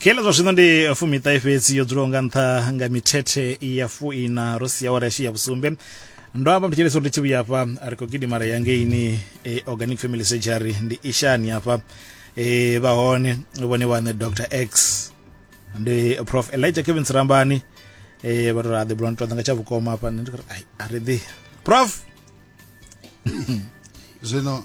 kheḽa zwa zwino ndi fumiṱahe fhedzi yo dzulaho nga nṱha nga mithethe ya fuina ro sia wara yashu ya vhusumbe ndo amba mthetshelesa uri ndi tshi vhuya hafha ri khou gidimara ya ngeini e, organic family surgery ndi ishani hafha e, vha hone vhone vhaṋe dr x ndi prof elijah kevin sirambani e, vha ri ra ḓi bula ntoḓa nga tsha vhukoma hafha ndi ri a ri ḓi prof zwino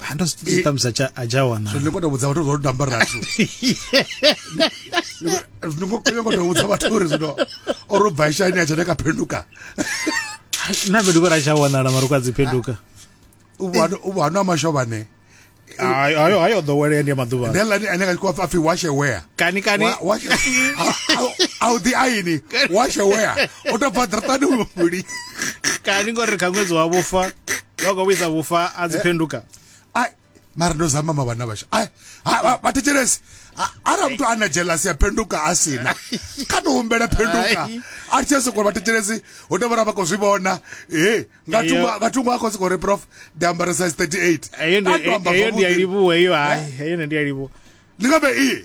hando zwi ṱamusi a tsha wana zwino kota vhudza vhathu zwo tamba rathu zwino ngo kota kota vhudza vhathu uri zwino o ro bva shani a tsha ka phenduka na vhe dukora tsha wanala maruka dzi phenduka u bwana u bwana mashovane ayo ayo ḓowelea ndi maḓuvha ndi ḽani ane ka kwa pfi washe wea kani kani washe a u ḓi aini washe wea o to bva ḓratani muli kani ngori kha ṅwedzi wa vhufa vhakwa vhuisa vhufa a dzi eh. phenduka ai mara ndo zama mavana vasha ai vathetshelesi ara muthu ana jealous ya phenduka a sina kha to humbela phenduka a tshi soko vathetshelesi ho to vhora vha khou zwi vhona e nga thungo nga thungo a khou soko ri prof ndi ambara size 38 eyo ndi ya livhuwa eyo hai eh? eyo ndi ya livhuwa ndi nga vhe i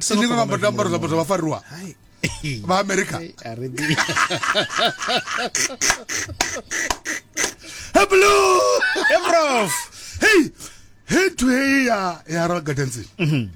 silinga nga mbadela ambaro zwiambaro zwa vhafariwa vha amerika heblo ebrof hey hey to hey ya ya royal gardens mhm.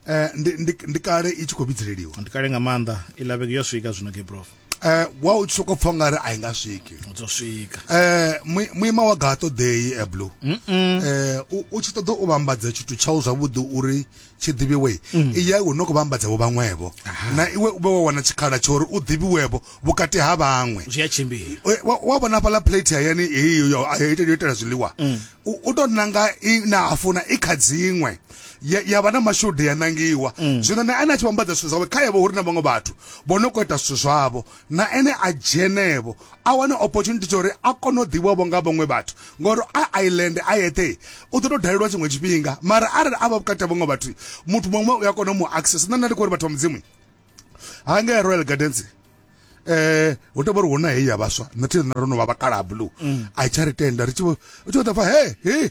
eh ndi ndi kale i tshi khou vhidzeleliwa ndi kale nga maanḓa i lavheke yo swika zwino gebrof eh wa u soko pfa nga ri a i nga swiki dzo swika eh muima wa gato day e blue eh u tshi ṱoḓa u vhambadza tshithu tshau zwavhuḓi uri tshi ḓivhiwe mm. i ya u no kho vhambadza vho vhaṅwevho na iwe u vhe wa wana tshikhala tsha uri u ḓivhiwevho vhukati ha vhaṅwe zwi a tshimbila eh, wa vhona hafhaḽa plate hayani heyo yo itela zwiḽiwa mm. u tou nanga i na hafuna i kha dziṅwe ya, ya vha na mashudu ya nangiwa mm. zwino na ene a tshi vhambadza zwithu zwawe kha yevho hu ri na vhaṅwe vhathu vho no kho ita zwithu zwavho na ene a dzhenevho a wane opportunity tsha uri a kone u ḓivhavho nga vhaṅwe vhathu ngori a island a yeṱhe u ḓo tou dalelwa tshiṅwe tshifhinga mara arali a vha vhukati ha vhaṅwe vhathu muthu muṅwe u a kona u mu access nṋe nda ndi khou uri vhathu vha mudzimu ha ngea royal gardens eh hu tovha uri huna heyi ya vhaswa nṋe thi ro no vha vhakala blue mm. a i tsha ri tenda ri tshi vho u tshi vho ḓa pfa he he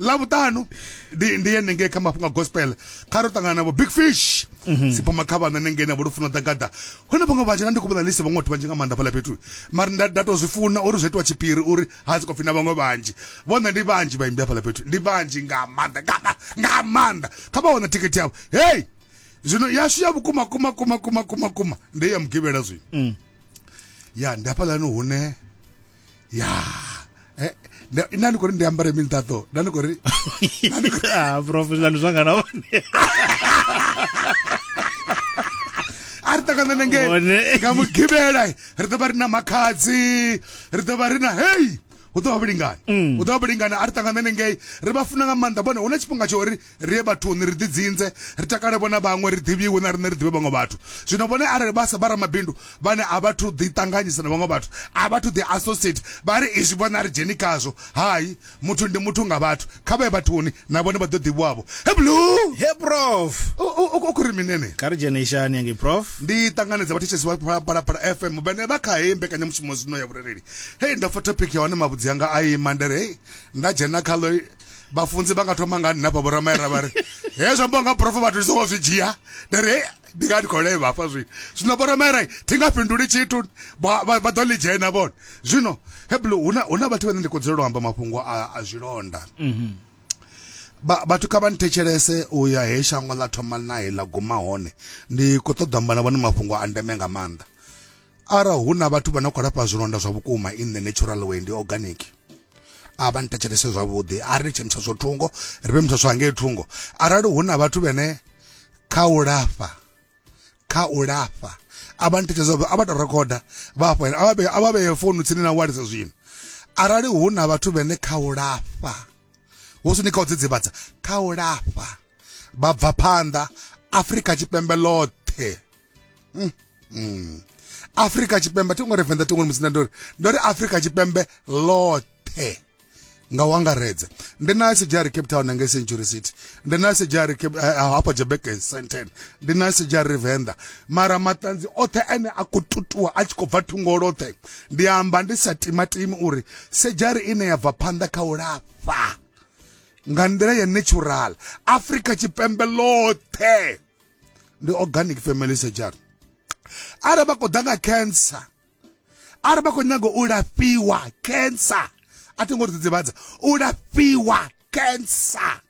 lavhuṱanu ndi ndi ye nengei kha mafhungo a gospel kha ro ṱangana navho big fish mhm. siphuma kha vhana nengei navho lufuna ḓagaḓa hone vhaṅwe vha dzhena ndi khou vhona lise vhaṅwe vhathu vhanzhi nga maanḓa fhaḽa fhethu mara nda nda tou zwi funa uri zwi itiwa tshipiri uri ha si khou pfhi na vhaṅwe vhanzhi vhona ndi vhanzhi vhaimbi hafhaḽa fhethu ndi vhanzhi nga maanḓa nga nga maanḓa kha vha wana thikhithi yavho hei zwino yashu ya vhukuma kuma kuma kuma kuma kuma ndi ya mugivhela zwino mm. ya ndi hafhaḽani hune ya eh, nda ndi khou ri ndi ambare mini taṱo nda ndi khou ri ah, professional zwanga na vhone a ri ṱangana nenge nga mugibela ri ḓo vha ri na makhadzi ri ḓo vha ri na hei hu ḓo vha vhulingani mm. hu ḓo vha vhulingani a ri ṱangana nengei ri vha funa nga maanḓa vhone hu na tshifhinga tsho uri Ri ye vhathuni, ri ḓidzinze, ri takale vho na vhaṅwe, ri ḓivhiwe na riṋe ri ḓivhe vhaṅwe vhathu. Zwino vhone arali vha sa vha ramabindu vhane a vha thu ḓi ṱanganyisa na vhaṅwe vhathu, a vha thu ḓi associate, vha ri izwi vhone a ri dzheni khazwo, hai, muthu ndi muthu nga vhathu, kha vha ye vhathuni, na vhone vha ḓo ḓivhiwa-vho. Heblu! He prof. U khou ri mini enei? Kha ri dzhene ishani hangei prof. Ndi ṱanganedza vhathetshelesi vha Phalaphala FM vhane vha kha heyi mbekanyamushumo zwino ya vhurereli. Hei, ndo pfa topic ya hone mavhudzi anga a ima, nda ri hei, nda dzhena khaḽo. vhafunzi vha nga thoma nga nna fha vhoramayera vha ri he zwi amba nga profo vhathu ndi songo zwi dzhia ndi ri ndi nga ndi khou levha hafha zwino zwino vhoramayera thi nga fhinduli tshithu vha ḓo ḽi dzhena vhone zwino heblo hu na vhathu vhane ndi khou dzulela u amba mafhungo a zwilonda mhm. vhathu kha vha nthetshelese u ya he shango ḽa thoma nae ḽa guma hone ndi khou ṱoḓa amba na vhone mafhungo a ndeme nga maanḓa ara hu na vhathu vha no khou lafha zwilonda zwa vhukuma in the natural way ndi organic a vha nthetshelese zwavhuḓi a ri litshe mutshatsho thungo ri vhe mutshatsho hangei thungo arali hu na vhathu vhene kha u lafha kha u lafha a vha nthetshelese a vha tou rekhoda vha hafho a vha vheye founu tsini na walisa zwino arali hu na vhathu vhene kha u lafha hu si ni kha u dzidzivhadza kha u lafha vha bva phanḓa afrika tshipembe ḽoṱhe mm. Mm. afrika tshipembe thi ngo ri venḓa tingoni musina ndori ndori afrika tshipembe ḽoṱhe nga u angaredza ndi na sejari cape town ngei century city ndi na sejari eh, eh, hafha jebek senten ndi na sejari venḓa mara maṱanzi oṱhe ane a khou tutuwa a tshi khou bva thungo loṱhe ndi amba ndi sa timatimi uri sejari ine ya bva phanḓa kha u lafha nga nḓila ya natural afrika tshipembe ḽoṱhe ndi organic family surgery arali vha khou ḓa nga cancer arali vha khou nyaga u lafhiwa cancer a thi ngo ri dzidzivhadza u lafhiwa cancer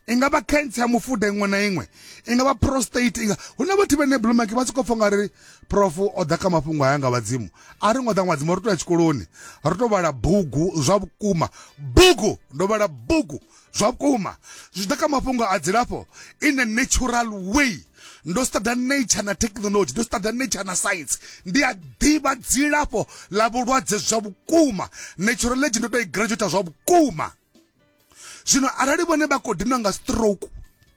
i nga vha cancer ya mufuda iṅwe na iṅwe i nga vha prostate inga hu na vhathu vhene blumaki vha sokou pfha nga ri prof o ḓa kha mafhungo aya nga vhadzimu a ri ngo ḓa nga vhadzimu ri to ya tshikoloni ri to vhala bugu zwa vhukuma bugu ndo vhala bugu Zwa vhukuma, zwi ḓa kha mafhungo a dzilafho in a natural way. Ndo studa nature na technology, ndo studa nature na science. Ndi a ḓivha dzilafho ḽa vhulwadze zwa vhukuma. Naturology ndo to i graduate zwa vhukuma. Zwino arali vhone vha khou dinwa nga stroke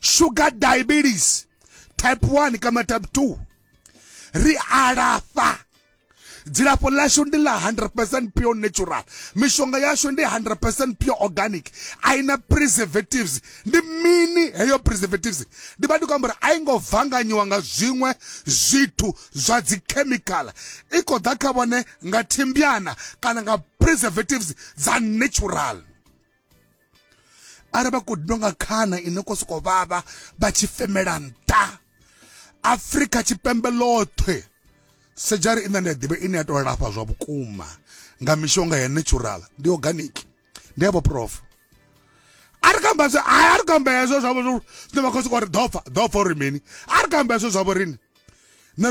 sugar diabetes type 1 kama type 2 ri alafha dzilafho ḽashu ndi ḽa 100% pure natural mishonga yashu ndi 100% pure organic a i na preservatives ndi mini heyo preservatives ndi vha ndi khou amba uri a i ngo vanganyiwa nga zwiṅwe zwithu zwa dzikhemikhala i khou ḓa kha vhone nga thimbyana kana nga preservatives dza natural ara vha khou dinwa nga khana i no khou sokou vhavha vha tshi femela nṱha afrika tshipembe ḽoṱhe sejari ine nda ḓivha ine ya tou lafha zwa vhukuma nga mishonga ya natural ndi organic ndi yavho prof a ri kamba zwe hayi a ri kamba hezwo zwavho zwine vha khou sokou ri ḓopfa ḓopfa uri mini a ri kamba hezwo zwavho rini na ri